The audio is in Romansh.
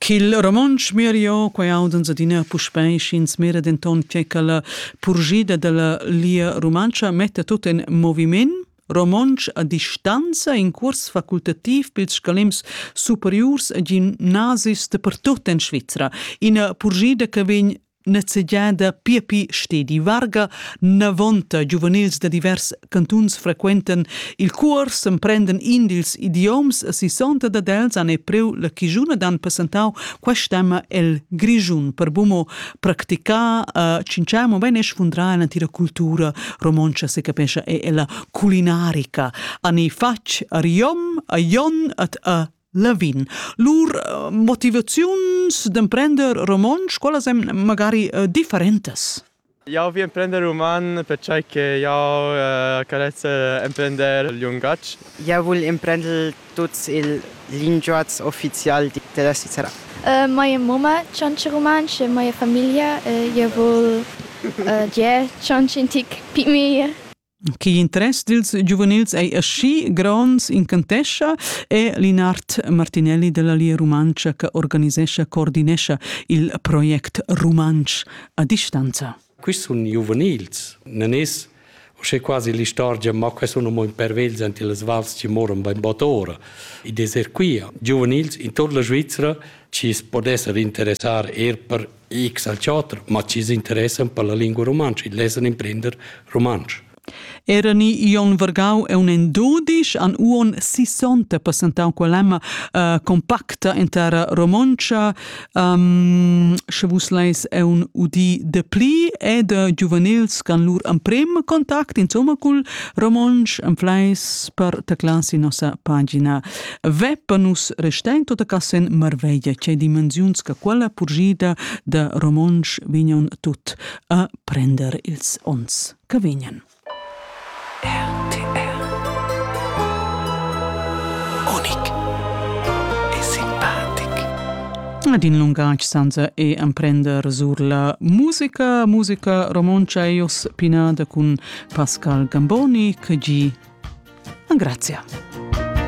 Ch'il romontsch mirio quai audans adina puspei sch'ins mira denton che quella purgida dalla Lia Rumantscha metta tut en moviment romontsch a distanza in curs facultativ pils scalems superiurs a gimnasis dapertut en Svizra. Ina purgida che vegn Nezegiada Piepi Stedi Varga, navonta giuvenils da divers cantuns frequentan il cuors, emprenden in dils idioms, a sissonta dad els han e preu la chigiuna dan passentau quest'emma el Grischun per bumo practicar a cincea mobein e sfundrar l'antira cultura romontscha se capescha e ella culinarica. Ani fatg a Riom, a Jon, at a Lavin. Lur eh, motivaziuns d'emprender romontsch, qualas èn magari eh, differentas? Jau vi emprender roman pertgei che jau eh, carezz emprender il lungatg. Jau vul emprender tuts ils linguatgs uffizials della Svizzera. Uh, moja mama čanče romanče, moja familia, uh, ja vol uh, dje čančintik pimi. Che interess dils giuvenils ei aschi gronds incantescha è Linard Martinelli della Lia Rumantscha che organisescha coordinescha il project Rumantsch a distanza. Questi sono giuvenils, non es uschè quasi l'istorgia, ma que sono mo impervels ante les vals che moran beim bottora. I deser qui giuvenils in tutta la Svizzera ci es pot esser interessar er per X al chatter, ma chi s'interessan per la lingua rumantscha, il lesan imprender rumantsch. Era ni Ion Vergau e un en dudisch an uon sissonte passentau quell'emma uh, compacta in terra romontscha. Um, sche vus leis è un udi de pli e de giuvenils can lur amprem contact insomma cul romonsch, am fleis per teclar si nossa pagina. Veppa nus restain tota cassen marveglia che dimensiuns che quella purgida da romontsch vignan tut a prender ils ons che vignan. RTR Unic e simpatic Ad in lungatg senza e emprender sur la musica, musica romontsch eios pinada cun Pascal Gamboni, che gi. Grazie.